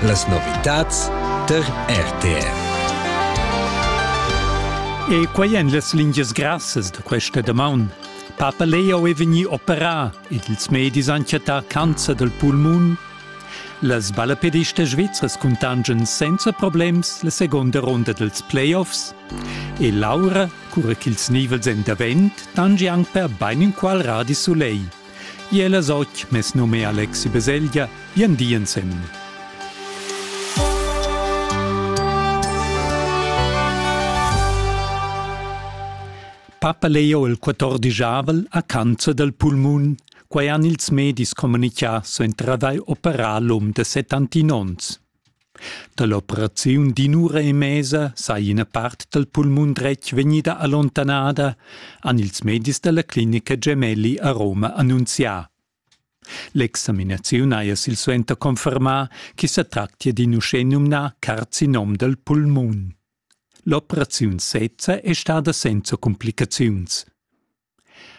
Las novitads tar RTR. E quai èn las lingias grassas da questa damaun. Papa Leo è vegnì operà ed ils medis han chattà cancer dal pulmun. Las ballapedistas svizras cuntangian senza problems la seconda ronda dels playoffs. E Laura, cura ch'ils nivels èn davent, tangi anc per bain inqual radi soleil. Iel as och mes num è Alexi Beselgia, vien di ensemen. Papa Leo il 14 a cancer del pulmun, quai han ils medis comunicà su entradai operalum de 70 onns. Dall'operaziun d'in'ura e mesa sai ina part dal pulmun dretg vegnida allontanada, han ils medis dalla clinica Gemelli a Roma annunzià. L'examinaziun haja silsuenter confermà ch'i sa tractia d'in uschenumnà carcinom dal pulmun. L'operaziun sezza è stada senza cumplicaziuns.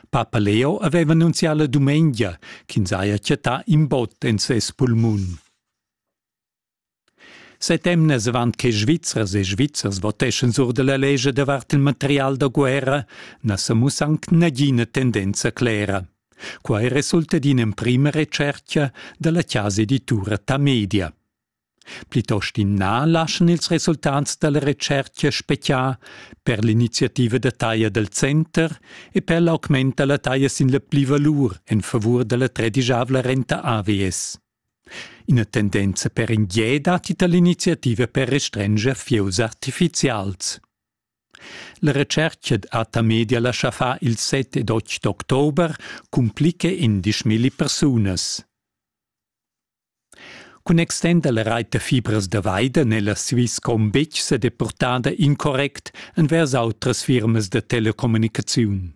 Papa Leo aveva annunzià la dumengia ch'ins haja chattà in bot en ses pulmun. Set emnas avant che Svizzers e Svizzers voteschan sur da la lescha davart il material da guerra na sa mussa anc nagina tendenza clera. Quai resulta d'ina emprima retschertga da la chasa editura Tamedia. Plitost in na laschan ils resultats da la retschertga speziar per l'iniziativa da taglia dal center e per l'augment da la taglia sin la plivalur en favur da la tredigiavla renta AVS. Ina tendenza per in gie datti tar l'iniziativa per restrenger fieus artifizials. La retschertga Ata Media lascha far il 7 ed 8 d'october cumplica indisch milli persunas. Cun extender la reit da fibras da Weide nella Swisscom betg sa depurtada incorrect envers autras firmas da telecommunicaziun.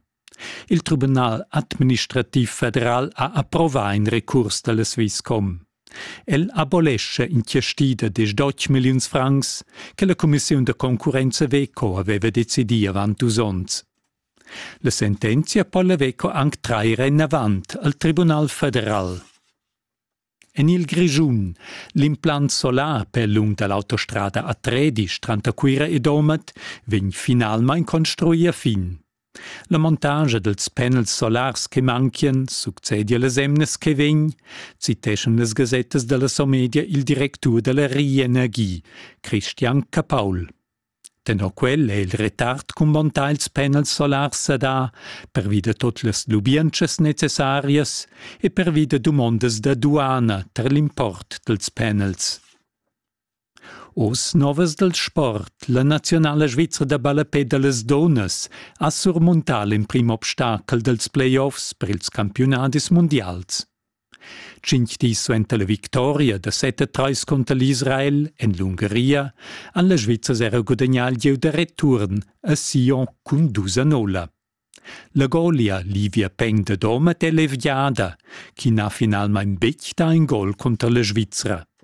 Il Tribunal administrativ federal ha approvà in recurs da la Swisscom. El abolescha inchiastida diesch deutsch milliuns francs che la cumissiun da concurrenza Veco aveva decidì avant dus onns. La sentenzia po la Veco anc trair enavant al Tribunal federal. En il Grischun. L'implant solar per lung da l'autostrada a Tredisch tranter Cuira e Domat vegn finalmain construì a fin. La montagia dels panels solars che manchien succedia las emnas che vegn, citeschan las gasettas della Somedia il directur della Rienergie, Christian Capaul. Tenor quel è il retard cumbontà ils panels solars sadà pervi da tut las lubientschas necessarias e pervi da dumondas da duana tar l'import dals panels. Oz novas dal sport. La naziunala svizra da ballapè da las dunnas ha surmuntà l'emprim obstacel dals playoffs per ils campiunadis mundials. Tschintg dis suenter la victoria da set a trais cunter l'Israel en l'Ungaria han las Svizzers era gudagnà il gieu da return a Sion cun dus a nolla. La golia Livia Peng da Domat è leviada, chi n'ha finalmain betg dà in gol cunter la Svizra.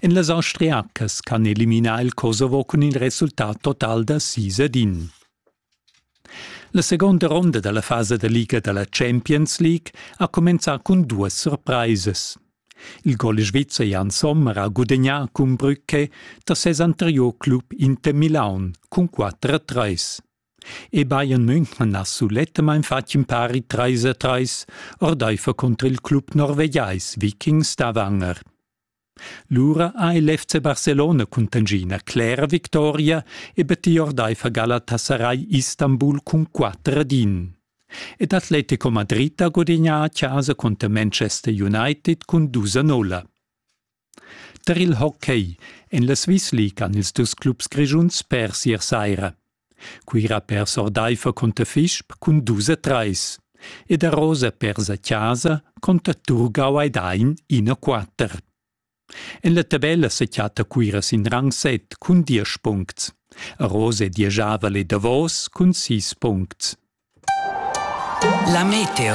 En las austriacas can eliminar il Kosovo cun il resultat total da sis ed in. La seconda ronda dalla fasa da liga dalla Champions League ha cumenzà cun duas surpraisas. Il gol svizzer Jan Sommer ha gudagnà cun Brücke da ses anterior club Inter Milaun cun 4-3. E Bayern München ha sulettamain fatg in pari 3-3 ordaifer contr il club norvegiais Vikings da Wanger. Lura ha il FC Barcelona cun tangina clera victoria e betti ordeifer Galatasaray Istanbul cun quatter ad in. Ed Atletico Madrid ha gudignà a chasa conter Manchester United cun dus a nulla. Tar il hockey en la Swiss League han ils dus clubs grischuns pers ier saira. Cuira per sordaifer conter Fisp cun dus e treis ed a Rosa per sa casa conter Turgau ei dain ina quater. En la tabella se chatta Cuira sin rang set cun diesch puncts. A Rose dieschavel e davos cun sis puncts. La meteo.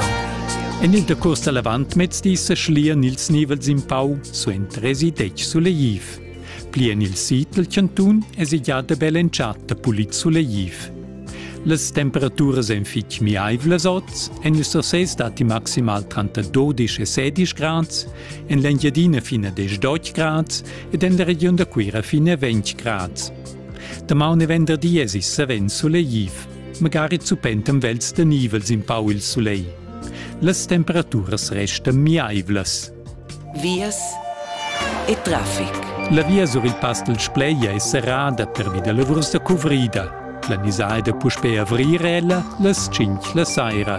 En il decurs da l'avantmezdi sa schlian ils nivels in pau suenter esi detg sulegliv. Pli en il sid dal chantun es i già da bel entschatta pulit sulegliv. Las temperaturas èn fitg miaivlas oz, en il Sursès datti maximal tranter 12 e 16 grads, en l'Engiadina fina 10 grads ed en la regiun da Cuira fina 20 grads. Damaun e venderdi es il savens sulegliv. magari zupentem vels da nivel sin pau il sulegl. Las temperaturas restan miaivlas. Vias e traffic. La via sur il pass del Spleia è serrada pervi da lavurs da cuvrida. Planisà è da puspè avrir ella las 5 la saira.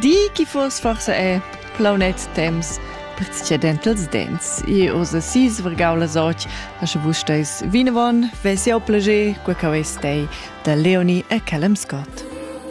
Di chi fuos forsa è plaunet temps precedent els dents. E os a sis vargau las och, da sche vus steis vinavon, ves jau plager, qua cau es tei, da Leonie e Callum Scott.